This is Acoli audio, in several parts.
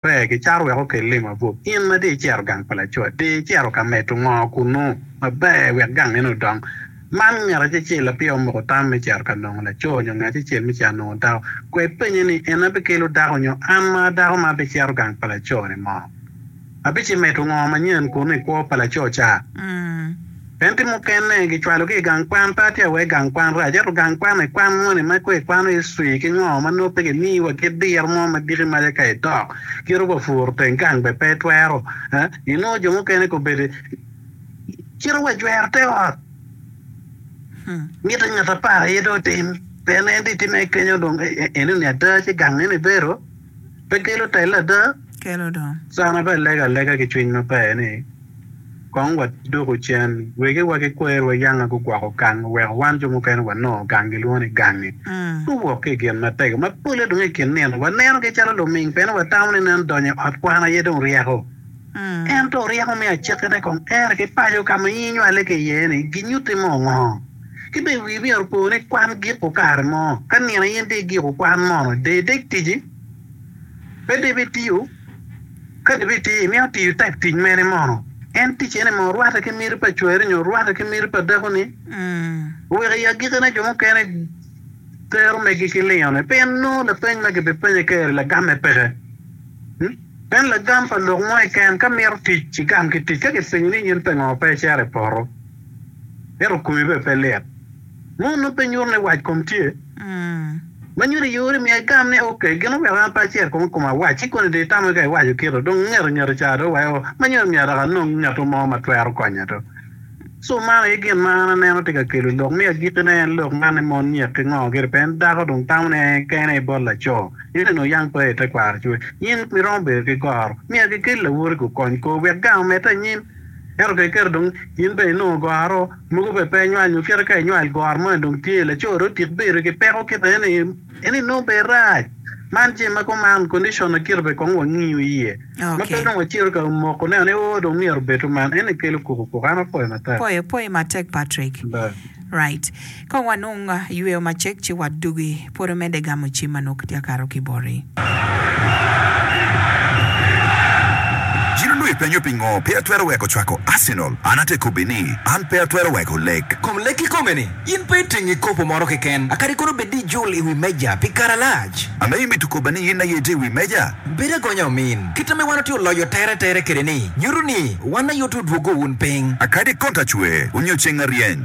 Pe gicaro wek okel lim abup. In ma dong icito gang pa laco, dong icito ka medo ngo kunnu maber wek gang meno odong? Man ngat acel-cel lapire omoko tam me cito ka nongo laco nyo ngat acel me cito nongo dako. Kwed penye ni, 'En abikelo dako nyo an ma dako ma abicito gang pa laco-ni mo? Abicimedo ngo manyen kunnu i kwo pa laco ca? En tye mukene, gicwalogi i gang kwan, pe atye awek gang kwan rac, ento gang kwan ekwan moni ma ko ikwano history ki ngo ma nongo pe gimiyi wa kit diro mo ma diki maca ka idok kit oba puro teng gang be pe itwero eeh inongo jo mukene ko bedi cito wa jwero te ot mite ngat apar aye dong otim pien en dong itime kenyo dong enoni ada ci gang nene ibedo. pe kelo telle ada? Kelo dong. Sana pe alego alega ki cwiny maber ni, Kong waduku cen, wegi wa ki kwerewa yanga gugwoko gang, oweko wan jo mukene wanongo gang gilwongo ni gangi. Guwok ki i gin matego ma pole dong i kin nino. Wanenogi calo luming pien watamo ni nen donyo i ot kwan aye dong ryeko. Ento ryeko me acekkine kong tere ki paco ka ma inywale ki iye-ni ginyutti mo ngo? Ki bene wii myero opo ni kwan giko kare mo. Ka nino aye in tye i giko kwan mono de ideg tici? Pe debe itiyo? Ka debe itiyo, imito tiyo tek tic mene mono? En tic ene mono rwatte ki miti pa cwari nyo rwatte ki miti pa dakoni? Wek i agikine jo mukene tero meggi ki lingone pien nongo lapeny ma kibipenye keri lagamme peke. Meno lagam pa lok mo keken. Ka imito tic, igam ki tic. Ka kipenyi ni in pe ngo, pe icito i poto. ento komi bene pe lit. Mo nongo pe nyuto ni wac kom tye. Ma nyuto iye ori miya igam ni, Ok, gin oweko an pe acer kong i koma awac. Ci koni dong itamo kika iwaco kito. Dong ngeto ngeto ca dong weko ma nyuto myero dok anong ngeto mo ma twero konya dong. So man aye gin ma an aneno tye ka kelo lok me agikkine en lok man ni mon nyek ki ngo gire pe en dako dong tamo ni en kene aye bot laco. Nyuto ni oyang pe aye tekwaro ci wek in miromo bedo ki goro. Myero kikel lawoti gukony kor wek gang omedde anyim. Ento ka iketo dong in bene inongo goro mogo pe pe nywal nyo kite ka inywal goro moni dong tye laco dong otik bedo ki peko kit eni en inongo bene rac man jami ma kuman condition na kite be kong wangiyo iye ma pe dong wacito ka moko neno ni oo dong myero obed kuman eni kelo kuku kuku an apoyo matek. Apoyo poyi matek Patrick right. Ka wanong yweyo macek ci wadugi, pud omedde gamo cim ma nongo kitye ka kato ki boti. Cen onongo ipenyo pingo pe atwero weko cwako Arsenal, an ate kobbi ni, An pe atwero weko lek. Kom lek kikome ni, in pe iting kikopo moro keken, a kadi kono bed ni ijul i wi meja pi kare alac. Ame imito kobba ni in aye itye i wi meja? Bedo agonya omin. Kit ame wan watye oloyo tere tere kede ni, nyuto ni wan aye otudwogo wun piny. A kadi konta cwer onyo ceng aryeny.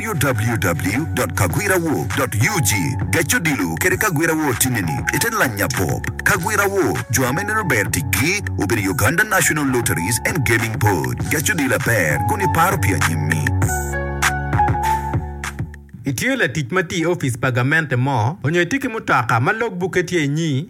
www.kagwirawo.ug Gec odilo kede kagwira wo time ni i te lanya pop. Kagwira wo jo ame neno ber ticgi obedo Uganda National Lotteries and Gaming Board. Gec odilo aber kun i paro pi anyimmi. Itye latic ma tye i opic pa gamente mo, onyo itye ki mutoka ma log bukke tye inyi?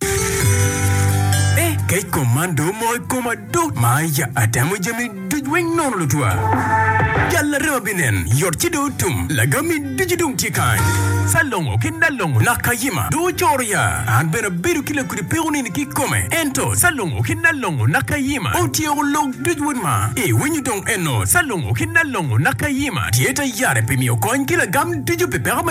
Eh, kec kom man do omoko i koma do. Ma ya atemo jami duc weng nono lutwa. Jal larema binen, yot ci do otum. Lagami ducu dong tye kany. Salongo ki Nalongo nak kayima do ocoro ya. An bene abedo ki lakudi peko nini ki kome. Ento Salongo ki Nalongo nak kayima otyeko lok duc wod ma. I winyo dong eno Salongo ki Nalongo nak kayima tye ta yare pi miyo kony ki lagam ducu pi peko me